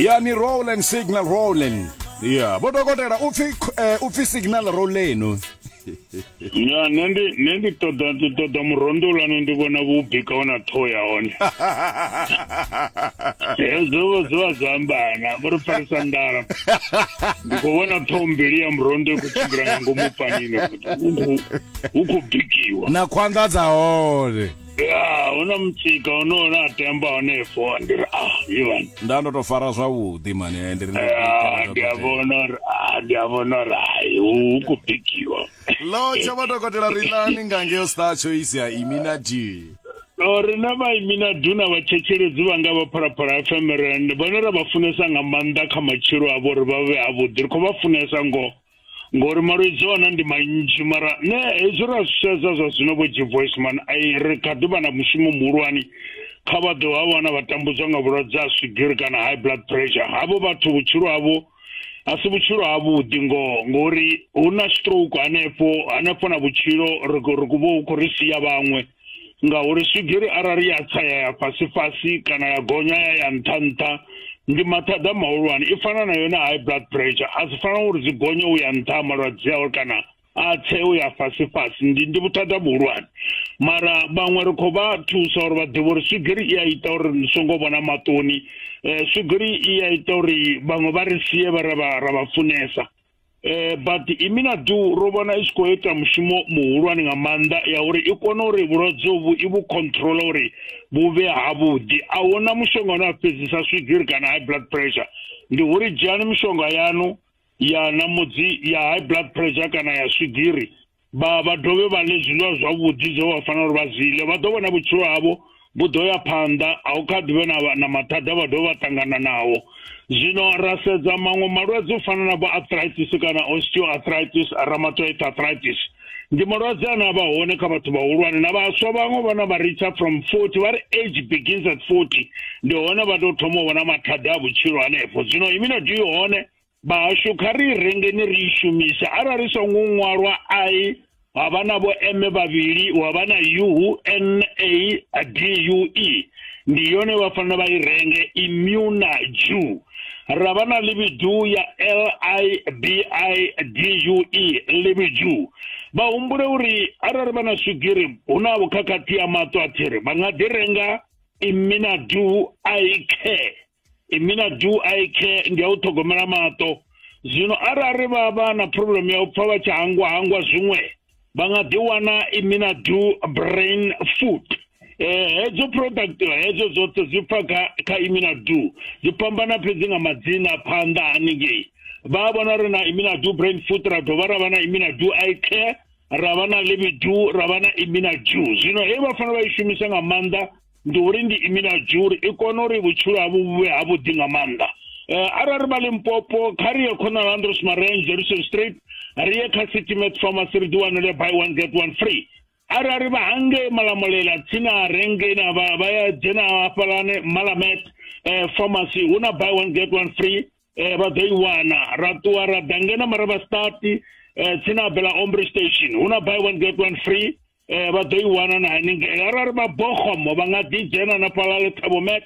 ya ni rollen signal rollen ya vho dokotela upfi eh, upfi signal rollenu ya nṋe ndi nṋe ndi ṱoḓa ndi ṱoḓa murondo ulano ndi vhona vhubika ona ṱhoho ya hone hezwo vho zwi vha zwa ambana vho ri farisa ndala ndi khou vhona ṱhoho mbili ya murondo i khou tshimbila nga ngomu panini hu khou bikiwa na khwanḓa dza hone ya hu na mutsika une une a temba hanefo ndi ri ah ivan nda ndo to fara zwavhuḓi mani eh, ndi ri ndo- ya ndi a vhona uri ah, ndi a vhona uri hai hu khou bikiwa lo tsha vha dokotela ri lani nga ngeo star choice ya iminati No, rina vaimina duna vachechelezi vanga va phalaphala fm rand vhane ra vha funesa nga maanḓa kha matshilo avho uri vha vhe avhuḓi ri khou vha funesa ngoho ngori malwedzi ona ndi manzhi mara ne hezwi ra zwi sedza zwa zwino vho jivoisman ai ri kha ḓi vha na mushumo muhulwane kha vha ḓo ha wana vha tambudzwa nga vhulwadze ha swigiri kana high blood pressure havho vhathu vhutshilo havho a si vhutshilo havhuḓi ngoho ngori hu na stroke hanefho hanefho na vhutshilo ri khou ri khou vha hu khou ri sia vhaṅwe ngauri swigiri arali ya tsa ya ya fhasi fhasi kana ya gonya ya ya nṱha nṱha ndi mathada mahulwane i fana na yone high blood pressure a si fana uri dzi gonye u ya nṱha malwadze awe kana a tse u ya fhasi fhasi ndi ndi vhuthada vhuhulwane mara vhaṅwe ri khou vha thusa uri vha ḓivhe uri swigiri i a ita uri ni songo vhona maṱoni um swigiri i a ita uri vhaṅwe vha ri sie vha ra vha funesa eh but imina du ro vhona i khou ita mushumo muhulwane nga maanḓa ya uri i kone uri vhulwadze vhu i vhu control uri vhu vhe ha vhuḓi a huna mushonga une a fhedzisa swigiri kana high blood pressure ndi uri dzhiani mishonga yanu ya namudzi ya high blood pressure kana ya swigiri vha vha dovhe vha ḽe zwiḽiwa zwavhuḓi zwe vha fanela uri vha zwi ḽe vha ḓo vhona vhutshilo havho vhu ḓo ya phanḓa a u kha ḓivhe na, na mathada vha dovha vha ṱangana nawo zwino ra sedza maṅwe malwadze u fana na vho arthritis kana osteoarthritis rheumatoid arthritis ndi malwadze ane a vha hone kha vhathu vhahulwane na vhaswa vhaṅwe vhana vha ritsha from 40 vha ri age begins at 40 ndi hone vha tou thoma u vhona mathada a vhutshilo hanefho zwino imino dii hone Vhahashu, kha ri i rengeni ri i shumise. Arali songo ṅwalwa I, ha vha na vho M vhavhili, hu vha na U, N, A, D, U, E. Ndi yone vha fanela vha i renge, immuna, Jew. Ra vha na ḽivhidu ya L, I, B, I, D, U, E, ḽivhidu. Vha humbule uri arali vha na swigiri hu na vhukhakhathi ya maṱo a thiri, vha nga ḓi renga immina du, I, care. mina do i care ndi a u ṱhogomela maṱo zwino arali vha vha na problem ya u pfa vha tshi hangwa hangwa zwiṅwe vha nga ḓi wana imina do brain food eh hedzo product hedzo dzoṱhe dzi pfa kha kha imina do dzi fhambana fhedzi nga madzina phanḓa haningei vha vhona uri na imina do brain food ra dovha ra vha na imina do i care ra vha na libidu ra vha na imina do zwino hei vha fanela vha i shumisa nga maanḓa ndi uri ndi imi na juri i kone uri vhutshilo havho vhuvhe ha vhuḓi nga maanḓa um arali vha limpopo kha ri ye khonal andros marange jerusalem street ri ye kha city met pharmacy ri ḓi wanele by one get one free arali vha hangei malamulela tsini a renge na vha ya dzhena hafhalane malamet um pharmacy hu na by one get one free eh vha ḓo i wana ra ṱuwa ra ḓa ngena mara vha start eh tsini na bela ombre station hu na buy one get one free eh vha ḓo i wana na haningei arali vha bogomo vha nga ḓi dzhena na fhala le thabomet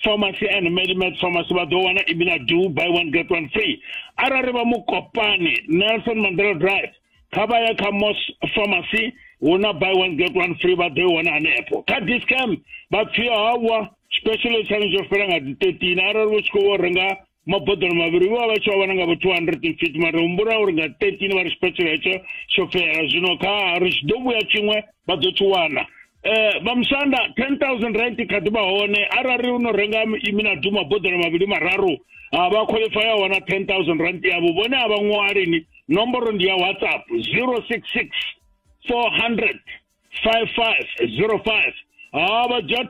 pharmacy and medimet pharmacy vha ḓo wana ibina do buy one get one free arali vha mukopani nelson mandela drive kha vha ye kha mos pharmacy hu na buy one get one free vha ḓo i wana hanefho kha discam vha pfhi hawa special tshaṋu tsho fela nga dzi thirteen arali vho tshi khou vho renga maboḓelo mavhili vho vha vha tshi vha vhona nga vho two hundred and fifty mara humbula uri nga thirteen vha ri special hetsho tsho fela zwino kha ri tshi ḓo vhuya tshiṅwe vha ḓo tshi wana eh vha musanda 10000 rand kha ḓi vha hone arali u no renga imina duma boḓelo mavhili mararu a vha qualify ya wana 10000 rand yavho vhone a vha ṅwali ni nomboro ndi ya whatsapp 066 400 5505 ha vha dzhia